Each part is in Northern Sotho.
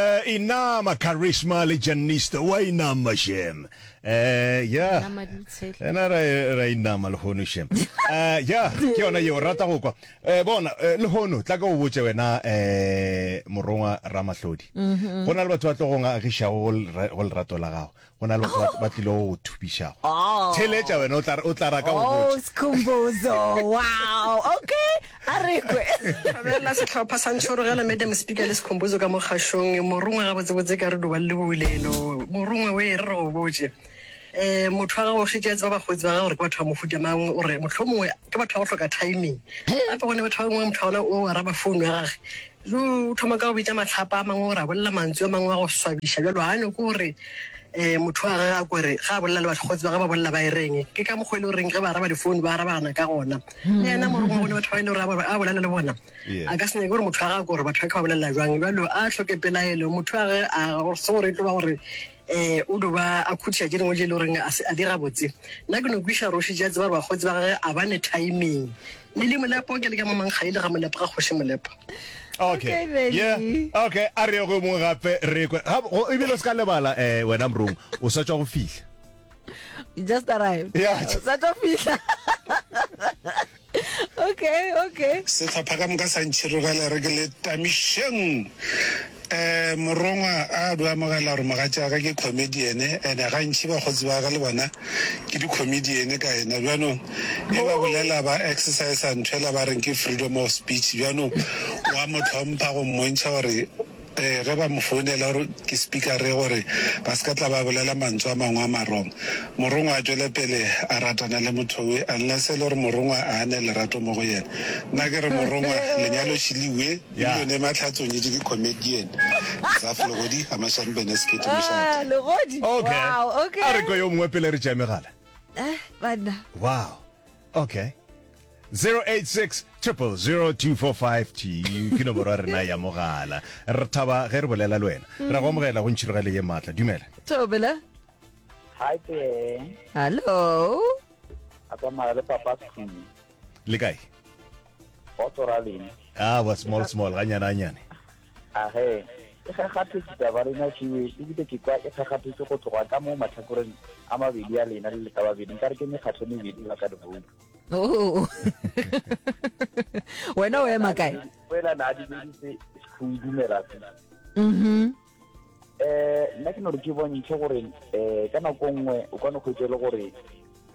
Eh, inama charisma le janista wa inama shem eh ya Inama di tshehla. ena ra ra inama lehono shem eh ya ke yona yeo rata go kwa eh bona eh, lehono tla ka o botse wena eh morongwa ramahlodi go na le batho ba tlogong a agišago go lera- go lerato la gago go na le batho ba- ba tlile go go thupišago Oh. theletša wena o tla- o tla raka go Oh, botša Skhumbuzo. Wow. Okay. A re kwe. abela setlhopha sa ntšhorogela madam speaker le sekhomposo ka mo kgašong morongwe gabotsebotse ka re doba le boulelo morongwe o e re re go botse um motho wa gago šetse a tseba bakgotsi ba gago gore ke batho ba mohuta mang o re motlho mongwe ke batho ba go hloka timing gape gone batho ba bangwe motho wa gona o araba founu ya gage Re o thoma ka go bitša mahlapa a mangwe gore a bolela mantswe a mangwe a go swabiša bjalo. Ga a nyoko gore um motho wa gage a kore ga a bolela le bakgotsi ba ge ba bolela ba e reng. Ke ka mokgwa e le goreng ge ba araba difounu ba arabana ka gona. Le yena morongwa bone batho ba e le gore a bolela le bona a ka se nyake gore motho wa gage gore batho ba ke ba bolela jwang. Bjalo a tlhoke pelaelo motho wa gage a se gore e tlo ba gore Ee, o do ba a khutiša tše dingwe tše e le goreng a se a di gabotse. Nna ke no kwiša Roši tše a tseba gore bakgotsi ba gage a ba ne timing. Lily Molepo, ke le ka Mamankga e le ga Molepo ga Kgoši Molepo. Okay, Okay, Benny. yeah, okay, a re ye go e mongwe gape re kwe. Ga- go- Ebile o se ka lebala eh, wena Mrong, o sa tšwa go fihla. You just arrived. Yeah. Sa tlo fihla. Okay, okay. Sehlopha ka moka sa ntšhirogela re ke le tamišeng. Um morongwa a be amogela gore mogatšaga ke comedian ene gantši bakgotsi ba ga le bona ke di-comedian ka ena bjanong e ba bolela ba exercise ntho ela ba reng ke freedom of speech bjanong wa mo tlhompha go mmontšha gore Ee, ge ba mo founela gore ke spikare gore ba se ka tla ba bolela mantswe a mangwe a marong, morongwa a tšwele pele a ratana le motho we, unless e le gore morongwa a ane lerato mo go yena. Nna ke re morongwa lenyalo šili we, Million e Matlha a tsonyetše ke comedian, Zaf Legodi a mašang bene sekete mošate. Legodi, Okay. wow, okay. A re kwa yo mongwe pele re tšea megala. Eh, banna. Wow. Okay. 086 245 ke nomoro ya rena ya mogala re thaba ge re bolela le wena ra go amogela go ntšhirogelo ye maatla dumela Tobela. Hi there. Hello. A tsamaya le papa Skhumi. le kae Go tsora leng. a wa small small ganyane ganyane A he. E gagaphetse taba rena fiwe ebile ke kwa e gagaphetse go tloga ka mo matlhakoreng a mabedi a lena le le ka babedi nkare ke mekgatlho mebedi ba ka diboutu. Oh. wena o ema kae wena na di le go dumela mhm eh nna ke no re ke bontshe gore eh ka nako nngwe o kwana go itse le gore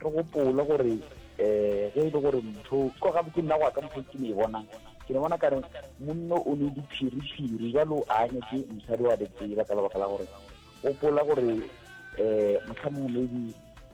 re gopole gore eh ge e le gore motho ko ga botse nna go ka motho ke ne e bonang ke ne bona ka re monno o ne diphiriphiri jalo a anya ke mosadi wa betsela ka lebaka la gore gopola gore eh motlha mongwe maybe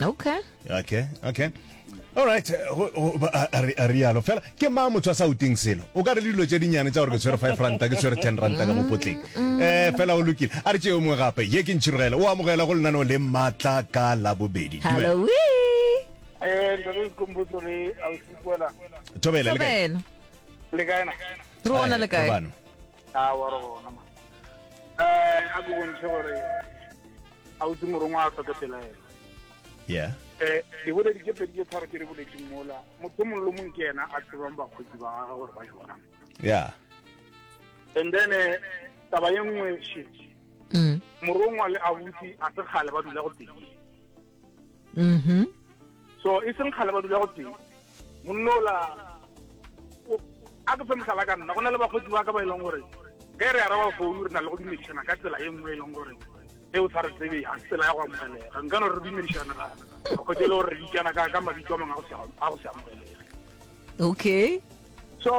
okay okay okay all right a rialo fela ke ma motho a sa uting selo o ka re le dilo tse dinnyane tsa gore ke tshwere five ranta ke tshwere ten ranta ka mopotleng um mm. eh, fela o lokile a re tse yo mongwe gape ye ke ntšhirogela o amogela go lenaneo le maatla ka labobedi thobela le kaena a wa re gona ma eh a ke bontšhe gore a utse morongwa a tlhoke pelaelo yeah eh ke boledi ke pedi ke tharo ke re boledi mola motho mongwe le mongwe ke yena a tsebang bakgotsi ba gagwe gore ba jwang yeah and then eh, taba ye nngwe shit mm. morongwa le abuti a se kgale ba dula go pedi mhm so e seng kgale ba dula go teng monnola a ke fe mohlala ka nna go na le bakgotsi ba ka ba e leng gore ge re araba founu re na le go dumedišana ka tsela e nngwe e leng gore e o sa re tsebe ga se tsela ya go amogelega nka no re dumedišana bakgotsi e le gore re bitsana ka mabitso a mangwe a go se amogelega okay so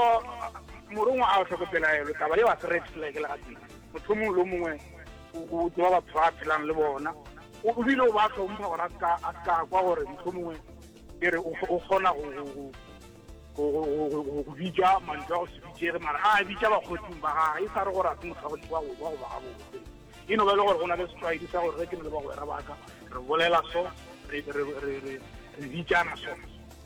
morongwa a tlhoko pelaelo taba yeo a se red flag le gatee motho mongwe lo mongwe o tseba batho ba phelang le bona o bile o ba tlhompha gore a ska kwa gore motho mongwe ke re o kgona go bitša mantswe a go se bitsege mara a bitša bakgotsing ba gage e sa re gore a se motho wa go goba gabotse e no ba e le gore go na le setlwaedi sa gore re ke ne le bagwera baka re bolela so re bitsana so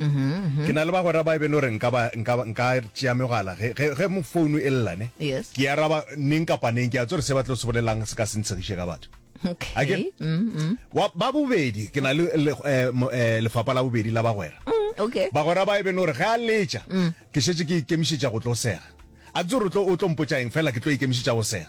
Mm-hmm. ke na le bagwera ba e bele gore nka tšea megala ge mo founu e llane ke araba neng kapa neng ke a tsore se ba tlo se bolelang se ka se ntshegiše ka batho mm-hmm. ba bobedi ke na le eh, eh, lefapa la bobedi la bagwera mm, bagwera ba e bele gore ge a letša mm. ke šetse ke ikemišetša go tlo sega a ke tsore o tlo mpotsa eng fela ke tlo ikemišetša go sega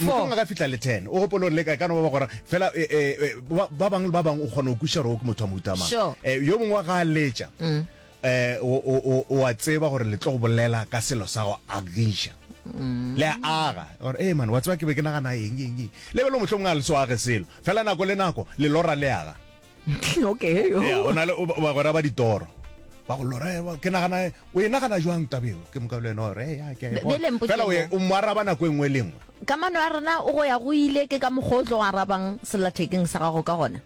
motlong a ka fitlha le ten o gopolong le ka ka no ba gora fela eh, eh, eh, ba ba bangwe le ba bangwe o kgona go kuša gore o ke motho wa mohutamang Sure. Eh, yo mongwe wa ga a letša um o- o o- o a tseba gore le tlo go bolela ka selo sa go agiša le a aga gore ee mane wa tseba ke be ke nagana eng eng eng le belo motlho mongwe a le so age selo fela nako le nako lelora le aga okay yeah, o na le bagwera ba ditoro ba go lora eh, ke nagana eh, o e nagana jwang tabeo ke moka le eno re ya ke fela o mo araba nako engwe le engwe kamano ya rena o go ya go ile ke ka mogotlo o arabang selathekeng sa gago ka gona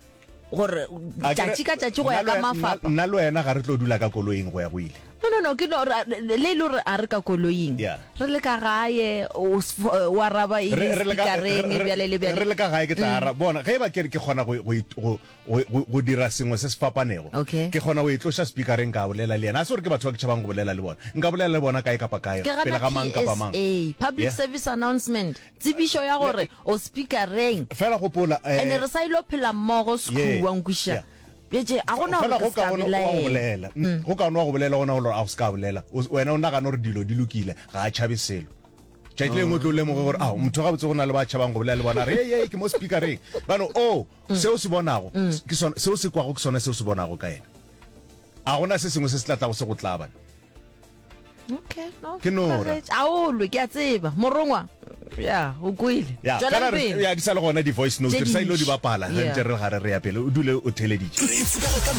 gore tšatši ka tšatši go ya ka mafapa nna le wena ga re tlo dula ka koloing go ya go ile No, no, no, ke no, ra, le lo re a re ka koloing. Yeah. Re le ka gae, o s- f- eh, wa raba e Re- le re le ka- speakereng, re- re- bjale le re bjale. Mm. le ka gae ke tla ara bona ge e ba ke re ke kgona go- go it- go- go- go- go dira sengwe se se fapanego Okay. ke kgona go e tloša speakereng ka bolela le yena a se gore ke batho ba ke tšhabang go bolela le bona nka bolela le bona kae kapa kae Ke gana pele ga mang kapa mang PSA, Public Yeah. Service Announcement, tsebišo ya gore o speakereng. fela gopola eh, Ene re sa ilo phela mmogo yeah, sekhuwa nkwiša. yeah. Bjetše, ga go na gore ke se ka belaela. Mm. Go kaone wa go bolela gona gore a go se ka bolela. Wena o nagana gore dilo di lokile, ga a tšhabe selo. Tšatši lengwe o tlo lemoge gore ao motho gabotse go na le ba tšhabang go bolela le bona re ye ke mo speakereng bano o mm. seo se bonago mm. ke sone seo se kwago ke sone seo se bonago ka ena a gona se sengwe se se tlatlago se go tlabana ke nora aolwe ke a tseba morongwa ya o kwele ya di sa le gona di-voice notes re sa ile di bapala re ntse re gare re ya pele o dule o theleditše